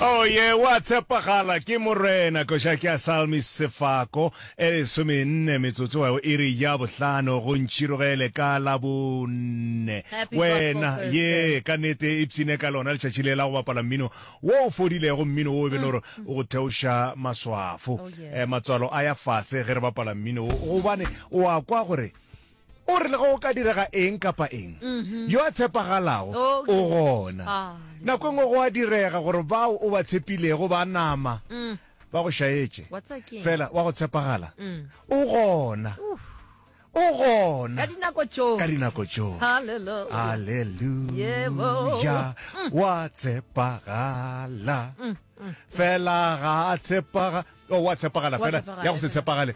Oh yeah, wa tshepagala ke morena koša ke a salmi sefako e lesomenne metsotso wa e re ya bohlano go ntšhirogele ka la bonne wena ye ka nete e psine ka lona letšatši le la go bapala mmino wo o fodilego mmino wo o be le gore o go theoša maswafo matswalo a ya fase ge re bapala mmino wo gobane o a kwa gore O re le ge go ka direga eng kapa eng, yo a tshepagalago o gona. Nako e nngwe go a direga gore bao o ba tshepilego ba nama ba go šaetše. Fela wa go tshepagala o gona. O gona ka dinako tšohle. Aleluya! Wa tshepagala fela. Ga a tshepagale. Oh, wa tshepagala fela. Ya go se tshepagale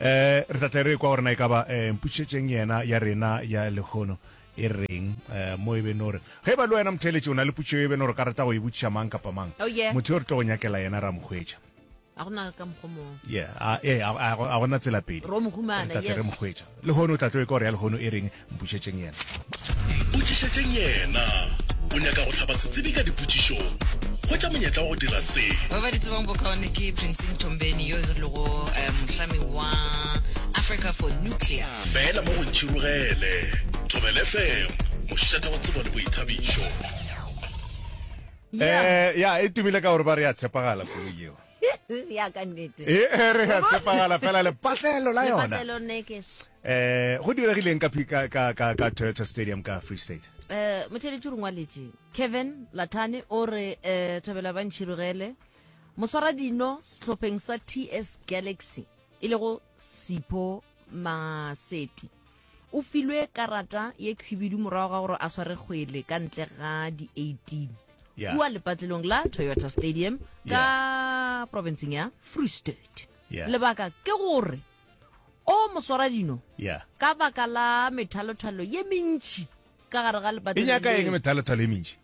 Ee, re tla tle re ekwa gore na e ka ba eh, mpušetšeng yena ya rena ya lehono e reng eh, mo e be no re ge e ba le wena motheeletši o na le putšo e be no re ka rata go e botšiša mang kapa mang Oh, yeah. motho yo re tlo go nyakela yena ra mo hwetša a go na ka mokgwa mong yeah a, eh, a, a, go- a gona tsela pedi Ro mo humana, Re tla tle re yes. mo hwetša lehono o tla tlo ekwa gore ya lehono e reng Mpotšišetšeng Yena. Mpotšišetšeng Yena. O nyaka go hlaba setsebi ka dipotšišong? Hwetša monyetla wa go dira se. Ba ba di tsebang bokaone ke Prince Mthombeni yo e rilego eh, mohlami wa Africa for Nuclear. Fela mo go ntšhirogele. Thobel FM, mošate wa tsebo le boithabišo. Eh, ya e tumile ka gore ba re ya tshepagala koloi yeo. ya ka nnete e e re ya tshepagala fela lepatlelo la yona Lepatlelo Nekesh. eh go diregileng ka phi- ka ka ka ka Toyota Stadium ka Free State Eh, motheletši o rengwaletše kevin latane o re um thabela ba ntšhirogele moswara dino sehlopheng sa ts galaxy e lego sipho Maseti o filwe karata ye khwibidu morago ga gore a sware kgwele ka ntle ga di-18 Yeah. kua lepatlelong la toyota stadium ka provinceng ya free state Yeah. lebaka ke gore o moswaradino Yeah. ka baka la methalothalo ye mentši ka gare ga E nyaka eng lepatlelo methalothalo e mentši?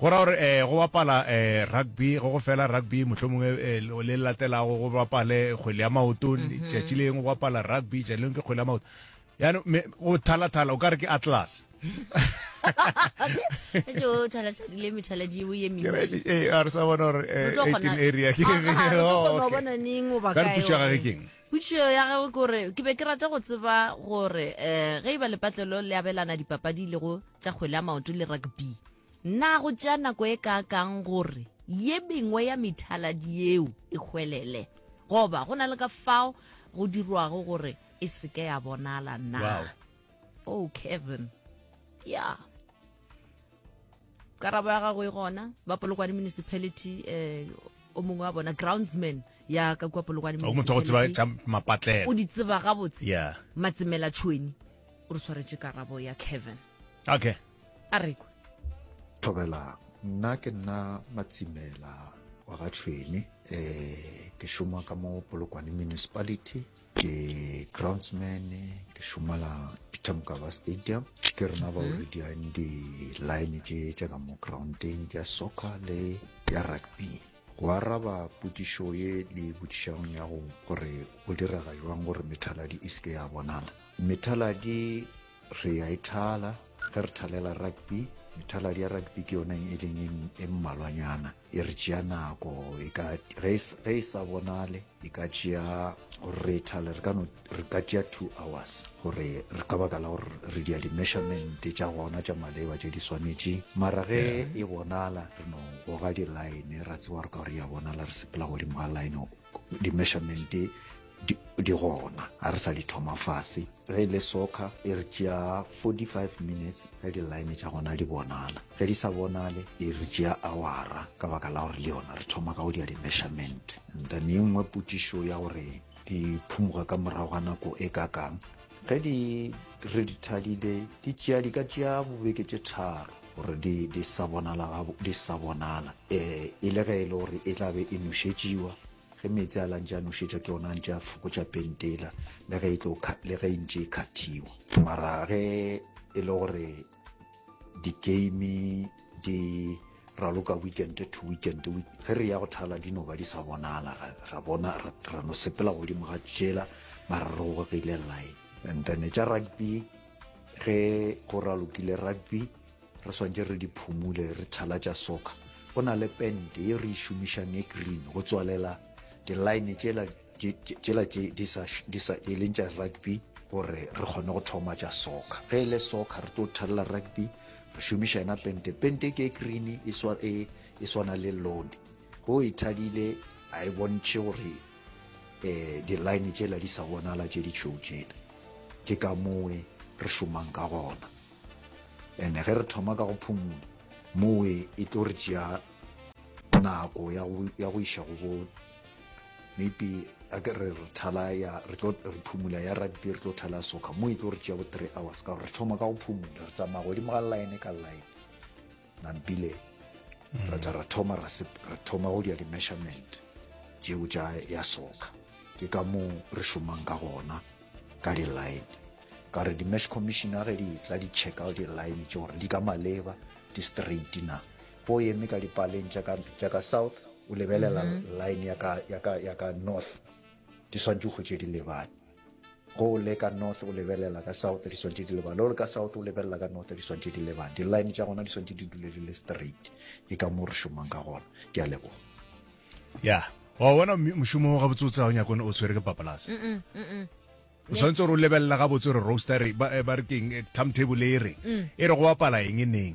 Go ra gore eh, go bapala eh, rugby, go go fela rugby, mohlomong eh, eh, le le latelago go bapale kgwele ya maoto, mhm. tšatši le eng go bapala rugby, tšatši leng ke kgwele ya maoto. Yaanong me go thalathala o ka re ke atlas. jo thala tshadile methala di o ye mentsi eh a re sa bona gore eh, area ke oh, okay. ka re pušega ke keng Putšio ya gagwe ke gore ke be ke rata go tseba gore um ge e ba lepatlelo le abelana dipapadi le go tša kgwele ya maoto le rugby na go tšea nako e kaakang gore ye mengwe ya methaladi yeo e hwelele goba go na le ka fao go dirwago gore e seke ya bonala na wow. oh kevin ya yeah. karabo ya gago e gona ba polokwane municipality um o mongwe wa bona groundsman ya ka kua polokwane o di tseba gabotse yeah. matsemela tšhweni o re tshwaretse karabo ya kevin okay a rekwe thobela nna ke nna matsimela wa ga tšhweni um eh, ke šoma ka mo polokwane municipality ke groundsman ke šomela peter mokaba stadium ke rena ba o mhm. re diang di-line tše tša ka mo groundeng tša soccer le ya rugby go araba potišo ye le potišang ya go gore go direga jwang gore methaladi e seke ya bonala methaladi Re a e thala. Ge re thalela rugby, methaladi ya rugby ke yona e leng e mmalwanyana e re tšea nako e ka ge e sa bonale e ka tšea gore re e thale re ka no re ka tšea two hours gore re ka baka la gore re dia di-measurement tša gona tša maleba tše di swanetše mara ge e bonala re no goga di-line ra tsewa re ka gore ya bonala re sepela godimo ga line di-measurement Di, di gona, ga re sa di thoma fase. Ge e le soccer, e re tšea 45 minutes ge di-line tša gona di bonala. Ge di sa bonale, e re tšea awara ka baka la gore le yona re thoma ka go dia di-measurement. And then e nngwe potišo ya gore di phumuga ka morago ga nako e ka kang. Ge di re di thadile, di tšea, di ka tšea bobeke tše tharo gore di, di sa bonala, ga, di sa bonala. E, e le ge e le gore e tla be e nošetšiwa. Ge meetse a la ntše a nošetšwa ke ona a ntše a fokotša pentela le ge e tlo le ge e ntše e khathiwa. Mara ge e le gore di-game di raloka weekend to weekend ge re ya go thala di no ba di sa bonala ra bona ra no sepela godimo ga tšela mara re gogegile line and then tša rugby ge go ralokile rugby Re swantše re di phumule, re thalatša soka. Go na le pente ye re e šomišang e green go tswalela di-line tšela tšela tše di sa di sa e leng tša rugby gore re kgone go thoma tša soka. Ge e le soka re tlo thalela rugby re šomiša yena pente. Pente ke e green e swa e e swana le load. Go e thadile a e bontšhe gore eh di-line tšela di sa bonala tše ditšhweu tšela. Ke ka mowe re šomang ka gona. ene ge re thoma ka go phomola mowe e tlo re tšea nako ya go iša go bo maybe a ke re re thala ya re tlo re phomola ya rugby re tlo thala ya soccer mo e tlo re tšea bo three hours ka gore re thoma ka go phomola re tsamaya godimo ga line ka line mampile mm. ra tla ra thoma ra thoma go dia di-measurement jeo tša ya soka ke ka moo re šomang ka gona ka di-line ka re di-mash commissioner ge di tla di check out di-line tše gore di ka maleba di straight na po eme ka dipaleng tša ka south o lebelela mm-hmm. line ya ka north di swantse go tše di lebane Go o le ka north o lebelela ka south di swantšhe di leba le o le ka south o lebelela ka north di swantšhe di leba di-line tša gona di swantšhe di dule di le straight ke ka moo re šomang ka gona ke a leboga ya wa bona mošomo wa gabotse o tsaya o nyako o tshwere ke papalase o tshwanetse gore o lebelela gabotse gore roaster ba eh, re keng eh, timetable e reng mm. e re go bapala eng e neng